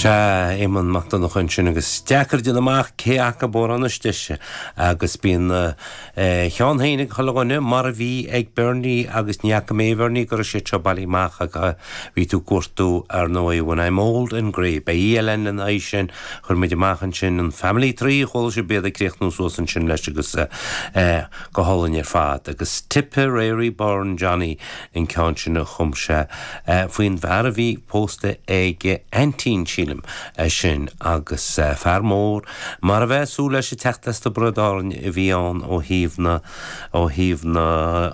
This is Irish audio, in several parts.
Seadh, Eamonn Mac Donncha annsin agus is deacair déanamh amach cé acub amhrán is deise agus bíonn a cheann féin ag chuile dhuine mar a bhí ag Bernie agus ní fhaca mé a Bhernie go raibh siad seo bailithe amach agam. Bhí tú ag cuartú ar ndóigh When I'm Old and Grey. Beidh oíche eile ann le na aghaidh sin. Chuir muid amach annsin an Family Tree, chuala sibh iad ag críochnú suas annsin leis agus go h-alainn ar fad. Agus Tipperary Born Johnny. an ceann sin a chum sé faoin bhfear a bhí pósta ag aintín, sílim, é sin, agus fear mór, mar a bheadh súil leis, ag teacht as Tiobraid Árainn a bhí ann ó thaobh na, ó thaobh na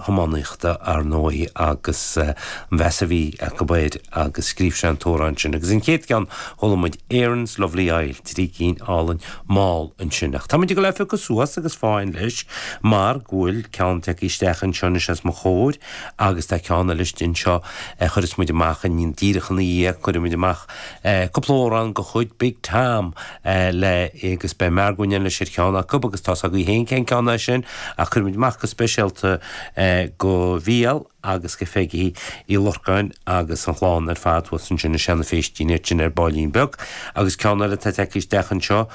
hiománaíochta, ar ndóigh, agus an mheas a bhí acu air agus scríobh sé an t-amhrán sin. Agus an chéad cheann, chuala muid Erin's Lovely Isle, trí cinn álainn, mall ansin. Ach tá muid ag dul á phiocadh suas agus fáth leis mar go bhfuil ceann tagtha isteach anseo anois os mo chomhair agus tá ceann eile istigh anseo a chuireas muid amach díreach ina dhiaidh, cuirfidh muid amach cúpla amhrán go chuid Big Tom le agus beidh Margo in éineacht leis ar cheann acub agus tá's agaibh féin cén ceann é sin ach cuirfidh muid amach go speisialta é go Mhícheál agus go Pheigí Uí Lorcáin agus an chlann ar fad thuas ansin i Seanadh Phéistín ar tin ar bailín beag agus ceann eile atá tagtha isteach anseo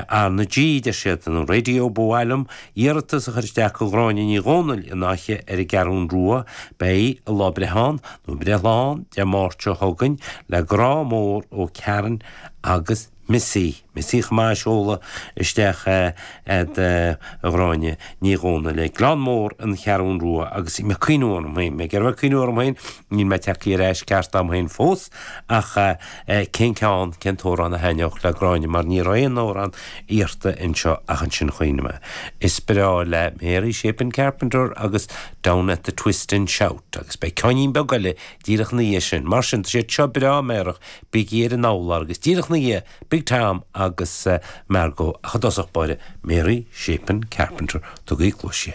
arna G deir siad nó raidió ba mhaith liom iarratas a chur isteach go Ghráinne Ní Dhomhnaill in Áth ar an gCeathrún Rua beidh a lá breithe ann nó Breithlá Dé Máirt seo chugainn le grá mór ó Karen agus Missy. Missy chomh maith a seoladh isteach do Ghráinne Ní Dhomhnaill ag Gleann Mór an Cheathrún Rua agus bhí mé ag cuimhniú orm féin. Mé ag iarraidh a bheith ag cuimhniú orm féin, níl mé tagtha ar ais ceart agam féin fós, ach cén ceann, cén t-amhrán a thaitneodh le Gráinne mar ní raibh aon amhrán iarrta anseo ach ansin chuimhnigh mé. Is breá léi Mary Chapin Carpenter agus Down at the Twist and Shout agus beidh ceáinnín beag eile díreach ina dhiaidh sin. Mar sin, tá siad seo breá meidhreach, Bígí ar an urlár agus díreach 'na dhiaidh Big Tom agus Margo ach i dtosach báire Mary Chapin Carpenter, tugaigí cluais di.